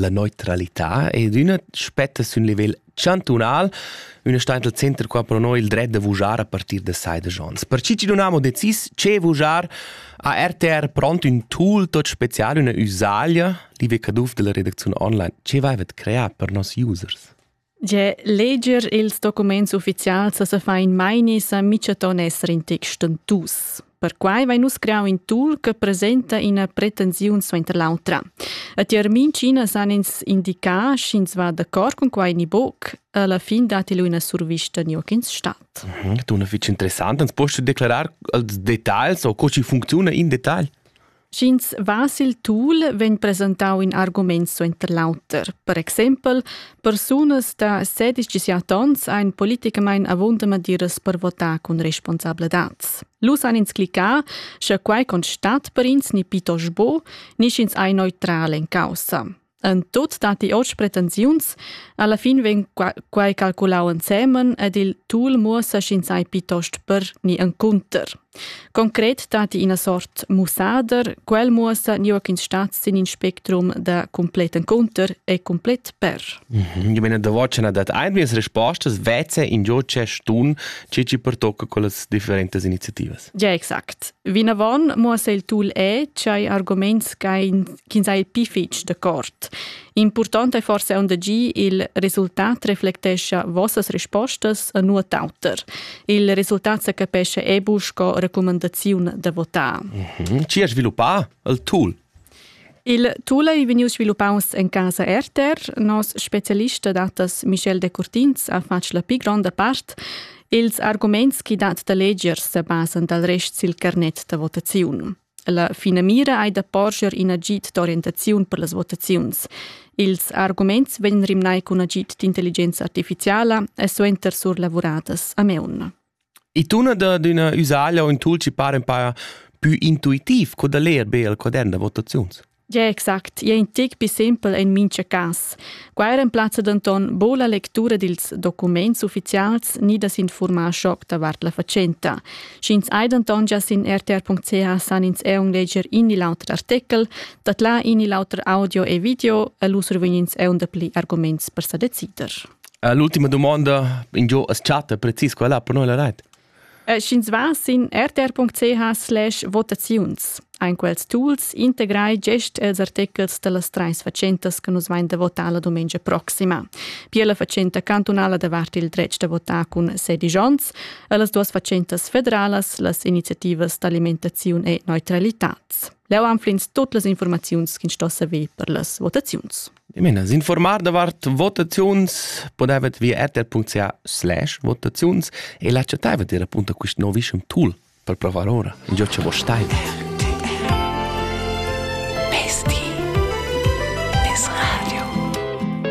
La neutralità è d'üna spetta sün livel chantunal, üna stainta al center qua pro noi il dret da vujar a partir da sai da Jons. Per chi chi non amo decis ce vujar, ha RTR pront ün tool tot special, üna üsaglia, liebe Caduff della Redaktion online, ce vaivet creà per nos users. Ge leger ils documents ufficials sa fa in meini sa michaton esser in tec stentus. Perquai vai nus creau in tool che presenta ina pretensiun suenter l'autra. A tier mincina san ins indicar, sch'ins va d'accord con quai ni boc. Alla fin dati lu ina survista ni ch'ins stat. Mhm, dunna fitg interessant. Ans post declarar als detagls o co ci funcziuna in detagl? Sch'ins va sil tul, vegn presentau in argument suenter l'auter. Per exempel, persunas da 16 onns ein politicamein avunda madiras per votar cun responsabladad. Lu san ins clicar, sche quei constat per ins ni pitost bo, ni sch'ins ei neutral en caussa. En tut datti oz pretensiuns, alla fin vegn quai calculau ensemen ed il tul muossa sch'ins ei piitost per ni encunter. Concret datti ina sort mussader, quel muossa ni ch'ins stat sin in spectrum da complet encunter e complet per. Mhm, ich meine, der Watcher dat einwirts respostas, vezze in gioce stun, cici pertocca con las differentes iniziativas. Ja, exact. Vinavon muossa il tul è ch'hai arguments ch'ins ha il pi fitg d'accord. Important è forse aunc gi il resultat reflectescha vossas rispostas a nuot auter. Il resultat se capesce ebu sco recumandaziun da votar. Mm -hmm. Ci ha sviluppà il tul? Il tula ei vegnius sviluppaus en casa RTR. Nos specialist da datas Michel Decurtins ha fatg la pli gronda part. Ils arguments che dat da leger se basan dal rest sil carnet da votaziun. La finamira ei da porscher in agid d'orientaziun per las votaziuns. Ils arguments vegn rimnai cun agid d'intelligenza artificiala e suenter surlavuradas a meun. I tuna dad üna üsaglia o ün tulci para ün pa pü intuitiv co da ler be al quadern da votaziuns. Ja exact, ja in tic pi simpel in mincha cas. Qua remplazza denton bo la lectura dils documents ufficials ni da s'informar schoc davart la fatschenta. Sch'ins hai denton già sin rtr.ch san ins eun leger in il auter artikel, dat là in il auter audio e video e lu survegnins eun dapli arguments per sa decider. Uh, l'ultima domanda ingio as chatta precis quella per noi la rait? Eh, Sch'ins va sin rtr.ch slash votaziuns, ein quels tools integrai gest els artechels dallas treis fatschentas che nus vain da votar la domenica proxima. Pia la fatschenta cantunala davart il dretg da votar cun sedisch onns e las duas fatschentas federalas, las iniziativas d'alimentaziun e neutralitat. Leu anflins tut las informaziuns ch'ins stossa ver per las votaziuns. Dimena, s'informar davart votaziuns podevet via rtr.ca slash votaziuns e l'accettavet ir appunto quist novischem tool per provar ora, ingio cha vos staiva.